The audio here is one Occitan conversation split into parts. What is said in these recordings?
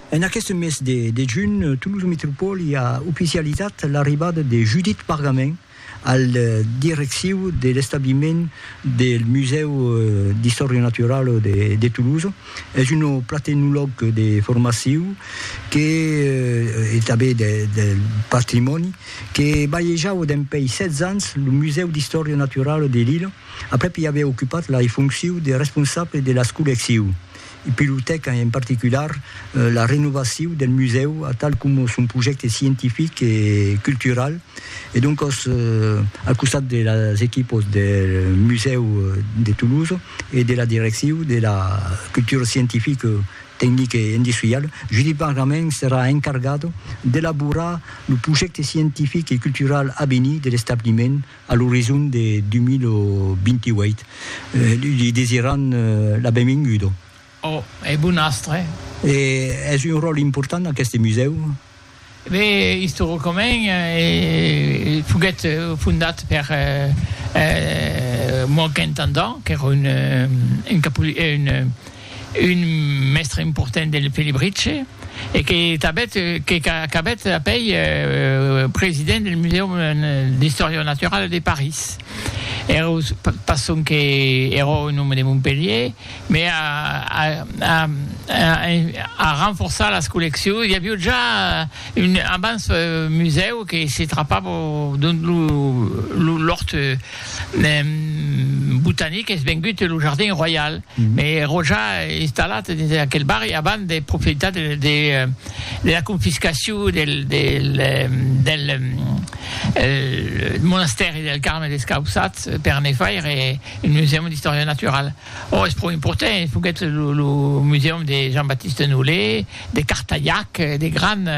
En aqueste mes de de junh, Tolosa Metropòli a oficializat l'arribada de Judit Pargamin al direcciu de l'establiment del Musèu d'Istòria Naturala de de Tolosa. Es un platenolog de formaciu que e tanben de de patrimòni que balhejava dempèi 16 ans lo Musèu d'Istòria Naturala de Lila, Aprèp i aviá ocupat la fonciu de responsable de las collecciu. I pilotèc en particular la renovaciu del musèu atal coma son projècte scientific e cultural e doncòs al costat de las equipos del musèu de Toulouse e de la direcciu de la cultura scientifica, tecnica e industriala, Judit Bargament serà encargat d'elaborar lo projècte scientific e cultural a venir de l'establiment a l'orizon de 2028. Li desiran la benvinguda. Ò, e bon astre. E es un ròl important aqueste musèu? Be, istoricament, foguèt fondat per Moankentandang, qu'èra un un mèstre important del Felibritge e que tanbèt que qu'acabèt apèi president del Musèum d'Istòria Naturala de París. Ero pas sonque ero un òme de Montpelhier, me a a a a renforçar las colleccions, i avió ja un abans musèu que se trapava dont lo l'òrt, Botanic es vengut lo jardin royal, mai ero ja installat dins aquel barri avant de profitar de la confiscacion del monastèri del Carme Descaussats per ne faire un musèu d'istòria naturala. Ò, es pro important, foguèt lo musèum de Jean-Baptiste Nollet, de Cartayac, de grand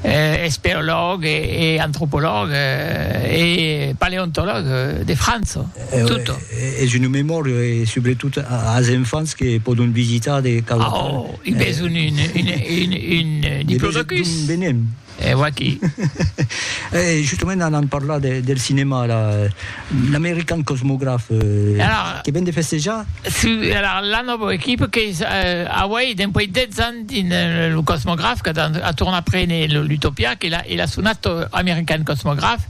espeològ e antropològ e paleontològ de França, tot. Es una memòria e subretot as enfants que pòdon visitar de cada. Ò, i bèsson un diplodocus. D'un de nen. E vaquí. E justament anam parlar del cinèma, l'American Cosmograph, que ven de festejar. Si, alara la nòva equipa qu'es auei dempuèi 10 ans dins lo Cosmograph, qu'a tornat prene l'Utopia, que l'as sonat American Cosmograph,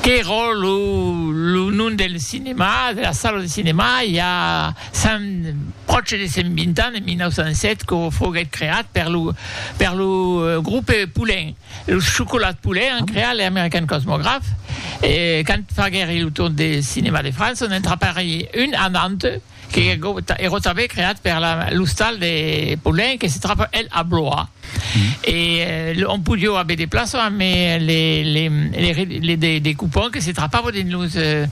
qu'èra lo nom del cinèma, de la sala de cinèma, i a. Sens pròche de 120 ans, en 1907, que foguèt creat per lo per lo grupe Poulin, los Chocolats Poulin an creat le American Cosmograph, e quand faguèri lo tour de cinèma de França, on entrapèri un anant que ero tanben creat per la l'ostal de Poulin que se tròba el a Blois, e on podió aver de plaças, amé les les les les des des coupons que se trapava dins los.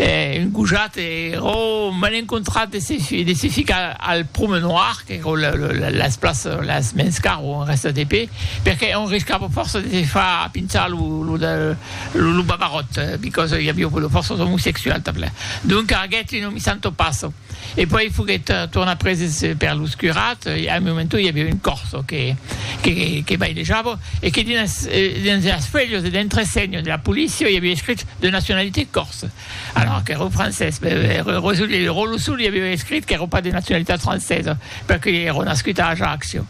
E un gojat ero m'en encontrat de se de se ficar al promenoir, qu'ero la la las places las mens car o en rèsta de pe, perque on riscava fòrça de se far pinchar lo lo de lo babaròt, because i aviá fòrças omosexuals tanpla. Donca aguèt un omissanto passo. E puèi foguèt tornat preses per los curats e al momento i aviá un corso que bailejava e que dins las fuèlhas de l'entresenho de la polícia i aviá escrit de nacionalitat corse alors qu'èra un francés e lo ròlo sul i aviá escrit qu'èra pas de nacionalitat francesa perque i èra nascut a Ajaccio.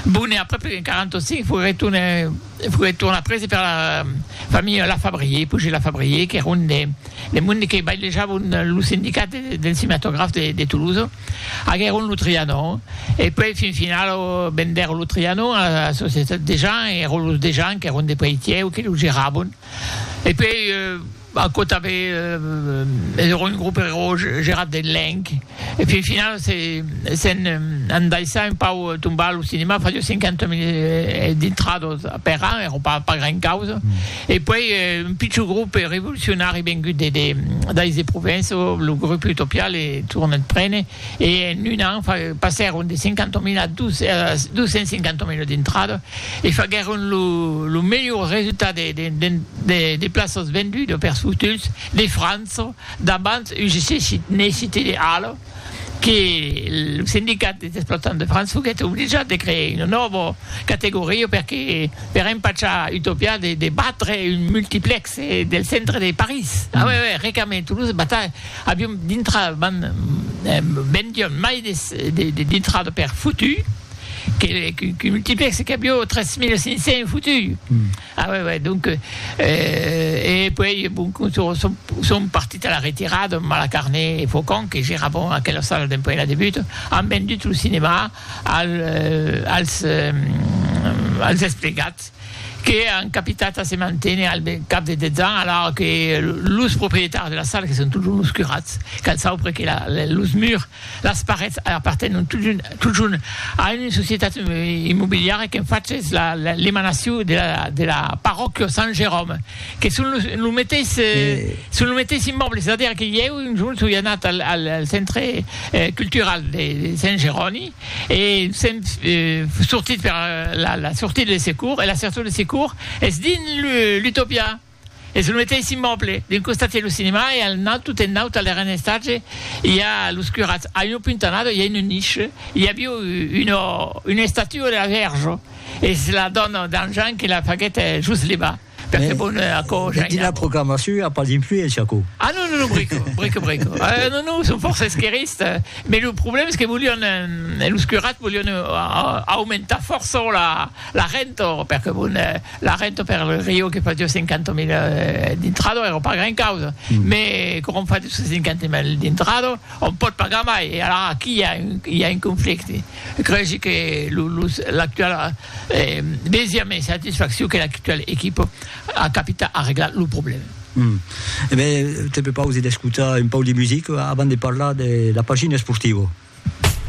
Bon e aprèp en 45 foguèt tornat E foguèt tornat prese per la familha Lafabrier, Pujé Lafabrier, qu'èra un des monde que bailejavon lo sindicat del cinematograf de Toulouse. Aguèron lo Trianon e puèi fin final vendèron lo Trianon a la societat Dejean e èron los Dejean qu'èron de Peitièu que lo geravon e puèi Bah quò tanben es ero un grup ero gerat de lenc e fin final se se'n an daissar un pau tombar a lo cinema fadió 50 mil dintrados per an ero pas pas gran causa e puèi un pichon grup revolucionari vengut de de dais de Provenço lo grup Utopiale tornèt prene e en un an passèron de 50.000 a 250.000 d'intrada e faguèron lo melhor resultat de plaças vendudas per futuls de França davant UGC Cité de Halle que lo sindicat dels explotants de França foguèt obligat de crear una nòva categoria per empachar Utopia de batre un multiplexe del centre de París. Avion dintrada van vendion mai de dintrada per futu que qu'un multiplexe qu'avió 3500 futu a uèi uèi donc e puèi bon son partit a la retirada Malacarné e Faucon que geravon aquela sala dempuèi la debut an vendut lo cinemà als desplegats que an capitat a se manténer al cap de 10 ans, alara que los proprietaris de la sala, que son totjorn los curats, cal saupre que los murs, las parets apartenon totjorn a una societat immobiliara qu'en fach es l'emanacion de la parròquia Sant Jeròme, que son lo meteis immòble, es a dire que ieu un jorn soi anat al centre cultural de Sant Jeroni. E sèm sortit per la sortida de secours, e la sortida de secours es dins l'Utopia, es lo meteis immoble, d'un costat i a lo cinema e al naut, tot en naut a l'erren estatge, i a los curats, a una puntanada i a una niche, i avió una estatua de la Vèrge, es la dòna d'Anjan que la faguèt just levar. Perque bon, eh, aquò ja Dins la proclamacion i a pas d'influéncia, aquò. Ah non, non, non, brico, brico, brico. Eh, non, non, son fòrça esquerrista, mès lo problèma es que volián, eh, los curats volián aumentar fòrça la, la renta, perque bon, eh, la renta per lo Rio que fasiá 50.000 d'intrada èra pas gran causa, mès quand on fa 250.000 d'intrada, on pòt pagar mai, e alara aquí i a un, i a un conflicte. Cregi que lo, los, l'actual, Mès i a mès satisfaccion que l'actual equipa a capita arreglar lo problèma. E ben, te prepausi d'escotar un pauc de musica avant de parlar de la pagina esportiva.